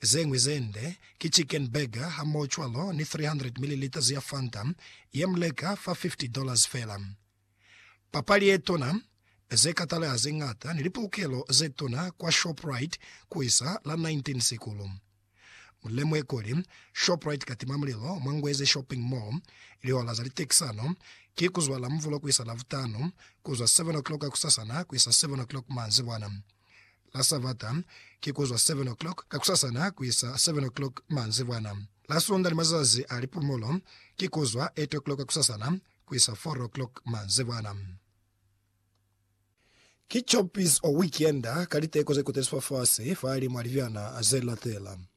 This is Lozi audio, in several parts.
Zeñwi ze nde ki chicken burger hamohocwalo ni 300 milliliters ya Fanta ye mu leka fa $50 fela. Papali ye tona, ze kataleha ze ñata ni lipulukelo ze tona kwa Shoprite ku isa la 19 Sikulu. Mu lemuhe kuli, Shoprite ka tima mulilo mwa Ngweze Shopping Mall, lihola za litekisano ki ku zwa Lamvulo ku isa Lavutanu, ku zwa 7 o'clock kusasana ku isa 7 o'clock manzibwana. La Savata, ki ku zwa 7 o'clock kakusasana ku isa 7 o'clock manzibwana. La Sunda ni mazazi a lipumulo, ki ku zwa 8 o'clock kakusasana ku isa 4 o'clock manzibwana. Ki choppies o weekend ka liteko ze kutezi fafasi fahalimu a libyana ze latela.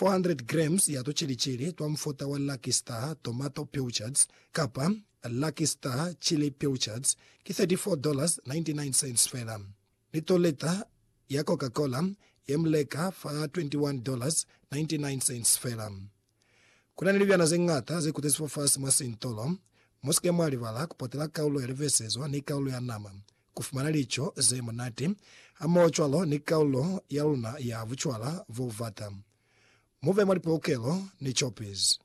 400 grams ya tuceli-celi twa mufuta wa Lucky Star Tomato Pilchards kapa Lucky Star Chili Pilchards ki $34.99 fela. Ni tolita ya Coca-Cola ye mu leka fa $21.99 fela. Ku na ni libyana ze ñata ze kutezi fafasi mwa sintolo. Mu si ke mwa libala ku potela kaulo ya livesezo ni kaulo ya nama. ku fumana lico ze munati hamoho cwalo ni kaulo ya luna ya bucwala bo bubata. Mu be mwa lipolokelo ni copies.